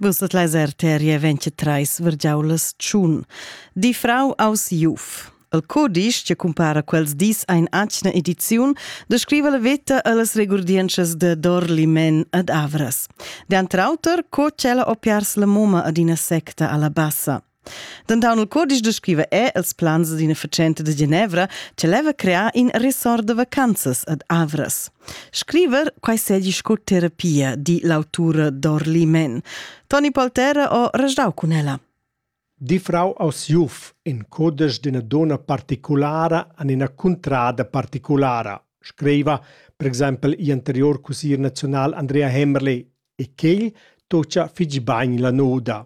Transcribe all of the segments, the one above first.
Vus dat lezer teria 23 vergiaulas tschun. Di frau aus Juf. El codisch che cumpara quels dis ein atgna ediziun descriva la veta allas regurdientschas de Dorlimen ad Avras. De antrauter co tschella opiars la moma ad ina secta alla bassa. Denton il codice descriva è els plans d'ina facenta de Genevra che leva crear in resort de vacanzas ad Avras. Scriver quai segi sco terapia, di l'autura Dorli Men. Toni Poltera ho rajdau cun ella. Di Frau aus Juf in codice d'ina donna particolare an ina cuntrada particolare, scriva per exempel gl'anterior cusier nazional Andrea Hemmerle e quel tocia fitg bagn la noda.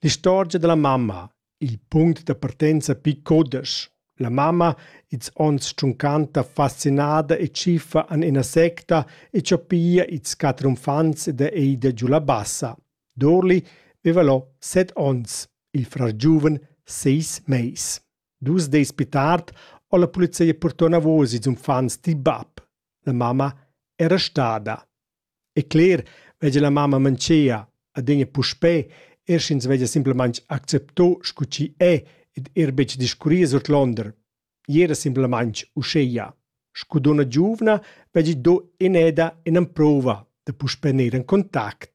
L'istorgia dalla mamma, il punct da partenza pil cudesch. La mamma, ils onns tschuncanta fascinada e tschiffa an ina secta e cho pia ils quatter uffants da Eida giu la bassa. Dorli veva lo set onns, il frar giuven seis meis. Dus dis più tard ho la polizia portò navos ils uffants dil bab. La mamma era stada. E cler veggia la mamma mantschea adüna puspè eir sch'ins veggia simplamaing accepto scu chi è ed eir betg discurrir surclonder. Gnir simplamaing uschea. Scu dunna giuvna veggi do ineda in'amprouva da puspè gnir in contact.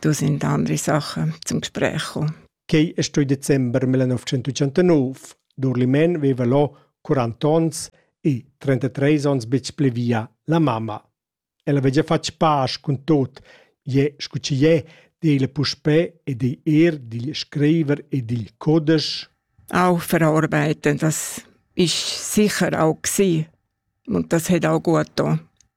dus in andere Sachen zum Gespräch gekommen. Quei è stoi december 1989. Durlimen veva lo 40 onns e 33 onns betg pli via la mamma. Ella vegia fatg pasch cun tot, je scu ci je, dele puspè e de er digl screiver e digl codesch. Auch verarbeiten, das ist sicher auch gewesen. Und das hat auch gut getan.